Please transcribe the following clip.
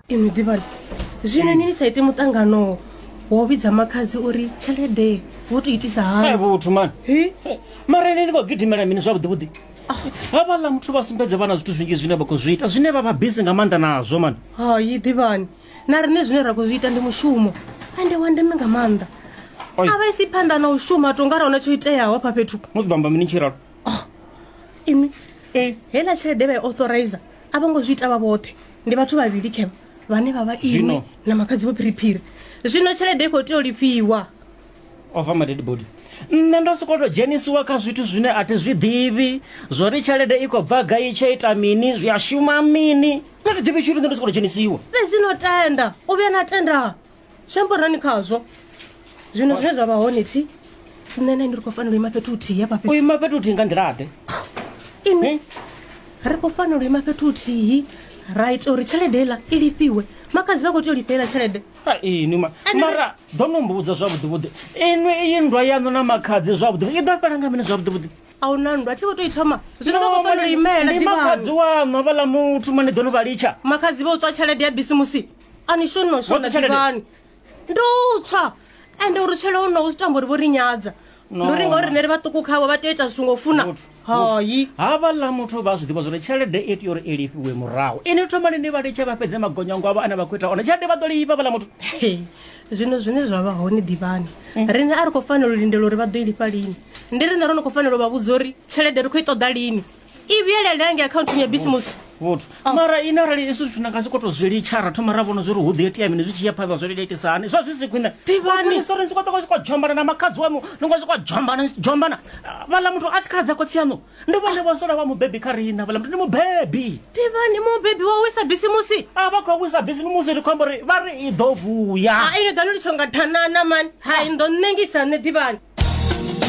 ino ḓivhani zwino ni ni sa ite muṱangano wo vhidza makhadzi uri tshelede wo to itisa Hai, hani vhuthu mani Hi? mara ine ni khou gidimela mini zwavhuḓi vhuḓi havhaḽa muthu vha sumbedze vhana zwithu zwinzhi zwine vha khou zwi ita zwine vha vha bisi nga maanḓa nazwo mani hayi ḓivhani na riṋe zwine ra khou zwi ita ndi mushumo ende wa ndeme nga maanḓa Oi. a vha isi phanḓa na u shuma to nga ra hona tsho iteaho hafha fhethu no ḓo amba mini tshiralo imi heiḽa tshelede vha i authorizer a vho ngo zwi ita vha vhoṱhe ndi vhathu vhavhili khe vhane vha vha iwe Zwino- na makhadzi vho phiriphiri zwino tshelede i khou tea u lifhiwa ova madedi body nṋe ndo sokou tou dzhenisiwa kha zwithu zwine a thi zwi ḓivhi zwo ri tshelede i khou bva gai tsho ita mini zwi a shuma mini nṋe thi ḓivhi tshithu nṋe ndo sokou tou dzhenisiwa fhedzi no tenda u vhuya na tenda zwi amba uri nani khazwo zwino zwine zwa vha hone thi nṋe na ndi ri khou fanela u ima fhethu huthihi hafha fhethu u ima fhethu huthihi nga nḓilaḓe ini ri khou fanela u ima fhethu huthihi ra ita uri tshelede iḽa i lifhiwe makadzi vha khou tea u lifhelela tshelede ini ma- Ende- mara ḓo no mbudza zwavhuḓivhuḓi inwi iyi nndwa yaṋu na makhadzi zwavhuḓivhuḓi i ḓo fhela nga mini zwavhuḓivhuḓi a hu na nndwa thi vho tou i thoma zwino vha khou fanela u imela ndi makhadzi ḓivhano waṋu avhaḽa muthu mani ḓo no vha litsha makhadzi vha u tswa tshelede ya bisimusi a ni shoni mashona Woṱhe tshelede? ḓivhani ndo tswa ende uri tshele o no u tamba uri vho ri nyadza No. ndo ri ngauri rine ri vhaṱuku khavho vha tea u ita zwithu ngo u funa Muthu, hayi havha ḽa muthu vha zwi ḓivha zwori tshelede i tea uri i lifhiwe murahu ini thomani ni vha litshe vha fhedze magonyango avho ane vha khou ita one tshelede vha ḓo lifha vhaḽa muthu Hey, zwino zwine zwa vha hone ḓivhani rine a ri khou fanela u lindela uri vha ḓo i lifha lini ndi rine ro no khou fanela u vha vhudza uri tshelede ri khou i ṱoḓa lini i vhuyelela hange akhaunthuni ya bisimusi vhuthu oh. mara ine arali izwi zwithu na nga si koto zwi litsha ra thoma ra vhona zwi uri hu ḓi itea mini zwi tshi ya phanḓa zwo iletisa hani zwa zwi si khwine ivanisorensi ko toko zwiko jombana na makhadzi wamu ni ngo zwiko jombana jombana vhala muthu a si khaladza khotsi yaṋu ndi vhone vhosola vha mubebi kha riṋa vhala muthu ndi mubebi ivani mubebi wa wisa bisimusi a vha khou wisa bisimusi ri khombo ri vha ri i ḓo vhuya ine ḓa no litsho nga thanana mani hai ndo nṋengisa nṋe ḓivhani